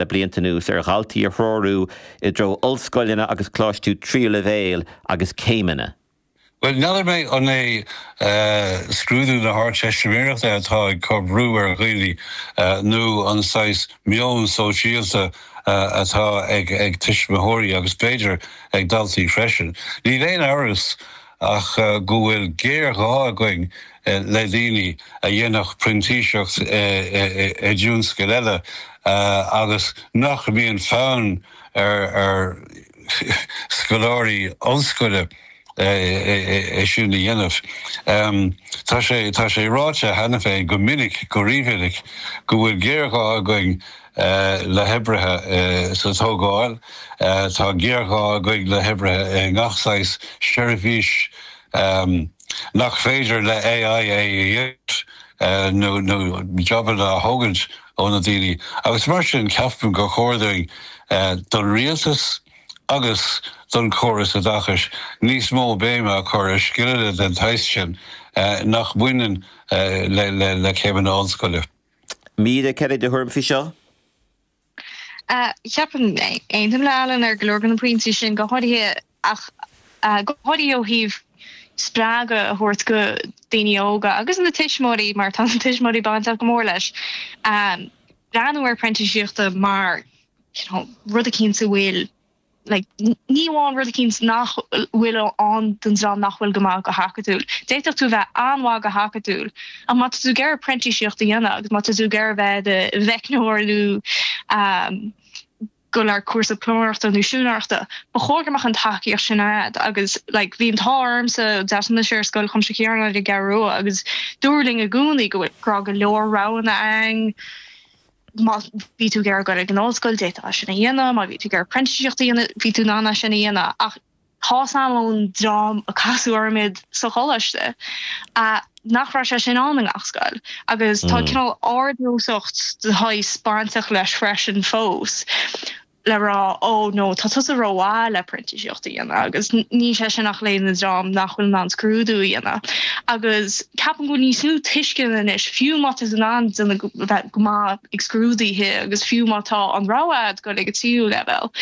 le blianta anuas ar dhaltaí a threorú i dtreo ollscoileanna agus coláistiú tríú leibhéil agus céimeanna. Bhuel, n'fheadar mé an é scrúdú na hArdteistiméireachta atá ag cur brú ar dhaoine nó an saghas meon sóisialta atá ag tuismitheoirí agus b'fhéidir ag daltaí freisin. Níl aon amhras ach go bhfuil géarghá againn le daoine a dhéanfadh printíseacht i dtionscail eile agus nach mbíonn fonn ar scoláirí ollscoile é sin a dhéanamh. Tá sé, tá sé ráite cheana féin go minic, go rímhinic, go bhfuil géarghá againn le hoibrithe sa tógáil. Tá géarghá againn le hoibrithe i ngach saghas seirbhís nach féidir le AI é a dhéanamh nó jobanna a thógaint ó na daoine agus mar sin ceapaim gur chóir dúinn, don rialtas agus don córas oideachais, níos mó béime a chur ar scileanna den tsaghas sin nach mbaineann le céimeanna ollscoile. Cad é do thuairim faoi seo? Ceapaim, aontaím le Alan ar go leor de na pointí sin go háirithe ach go háirithe ó thaobh spreagadh a thabhairt do daoine óga agus na tuismitheoirí mar tá na tuismitheoirí bainteach go mór leis breathnú ar printíseachta mar you know rud eicínt a bhfuil Ní amháin rud eicínt nach bhfuil ann don dream nach bhfuil go maith go hacadúil. D'fhéadfadh tú a bheith an-mhaith go hacadúil ach má tá tú ag iarraidh printíseacht a dhéanamh agus má tá tú ag iarraidh bheith i do mheicneoir nó dul ar chúrsa pluiméireachta nó siúinéireachta, ba chóir go mbeadh an tacaíocht sin agat agus like bhí an t-ádh ormsa d'fhreastail mise ar Scoil Chuimsitheach Chiaráin ar an gCeathrú Rua agus dúradh linn i gcónaí go raibh go leor roghanna ann. Má bhí tú ag iarraidh dul ag an ollscoil, d'fhéadfá sin a dhéanamh, má bhí tú ag iarraidh printíseacht a dhéanamh, bhí tú in ann é sin a dhéanamh ach tá a fhios agam ón dream a casadh orm sa choláiste nach raibh sé sin ann i ngach scoil agus tá cineál ardnósacht de shaghas bainteach leis freisin fós. le rá, Ó no, tá tusa ró-mhaith le printíseacht a dhéanamh agus níl sé sin ach le haghaidh an dream nach bhfuil in ann scrúdú a dhéanamh. Agus ceapaim go bhfuil níos mó tuisceana anois fiú má tá tú in ann déanamh go maith ag scrúdaithe agus fiú má tá an rogha a'd dul ag an tríú leibhéal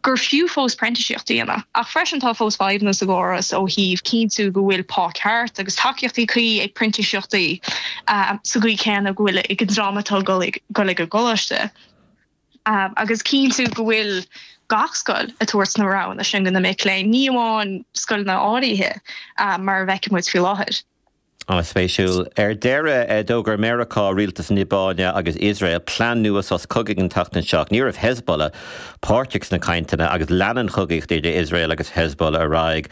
gur fiú fós printíseacht a dhéanamh. Ach freisin tá fós fadhbanna sa gcóras ó thaobh cinntiú go bhfuil pá ceart agus tacaíochtaí cuí ag printíseachtaí sa gcaoi céanna go bhfuil ag an dream atá ag dul ag an gcoláiste. agus cinntiú go bhfuil gach scoil ag tabhairt na roghanna sin do na mic léinn, ní amháin scoileanna áirithe mar a fheiceann muid faoi láthair. An-spéisiúil. Ar deireadh, d'fhógair Meiriceá, rialtas na Liobáine agus Iosrael plean nua sos cogaidh an tseachtain seo. Ní raibh Hezbollah páirteach sna cainteanna agus leanann an chogaíocht idir Iosrael agus Hezbollah ar aghaidh.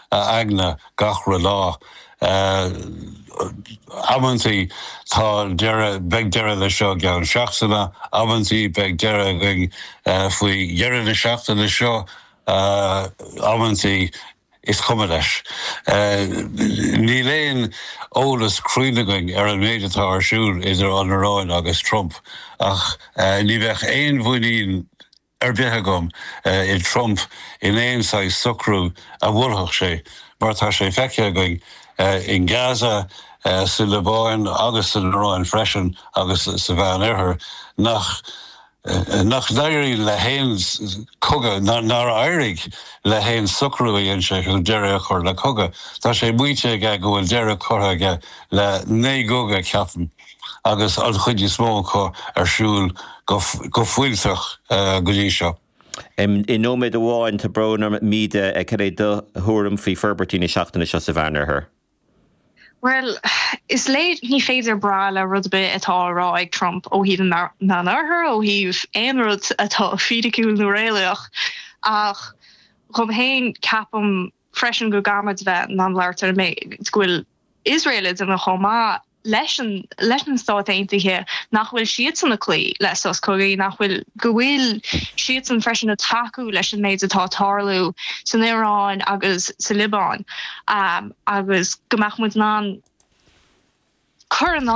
a aigne gach re lá. Amanntaí tá deireadh, beidh deireadh le seo i gceann seachtaine, amanntaí beidh deireadh againn faoi dheireadh na seachtaine seo, amanntaí is cuma leis. Níl aon eolas cruinn againn ar an méid atá ar siúl idir an Iráin agus Trump ach ní bheidh aon mhuinín ar bith agam i Trump in aon saghas socrú a mholfadh sé mar tá sé feicthe againn in Gaza, sa Liobáin agus san Iráin freisin agus sa Mheán Oirthear nach nach n-éiríonn le haon cogadh, nár éirigh le haon socrú a dhein sé chun deireadh a chur le cogadh. Tá sé maíte aige go bhfuil deireadh curtha aige le naoi gcogadh, ceapaim. agus an chuid is mó acu ar siúl go fuilteach go dtí seo. I nóiméad amháin, tá brón orm, Méabh, cad é do thuairim faoi forbairtí na seachtaine seo sa Mheánoirthear? Bhuel, is léir, ní féidir brath le rud ar bith atá á rá ag Trump ó thaobh na Meánoirthir, ó thaobh aon rud atá fídiciúil nó réalaíoch, ach dhom fhéin, ceapaim freisin go gcaithfimid bheith in ann labhairt ar an méid go bhfuil Iosrael ag déanamh chomh maith. leis an leis na Stáit Aontaithe nach bhfuil siadsan ag cloí le sos cogaidh, nach bhfuil go bhfuil siadsan freisin ag tacú leis an méid atá ag tarlú san Iaráin agus sa Liobáin agus go mbeadh muid in ann cur in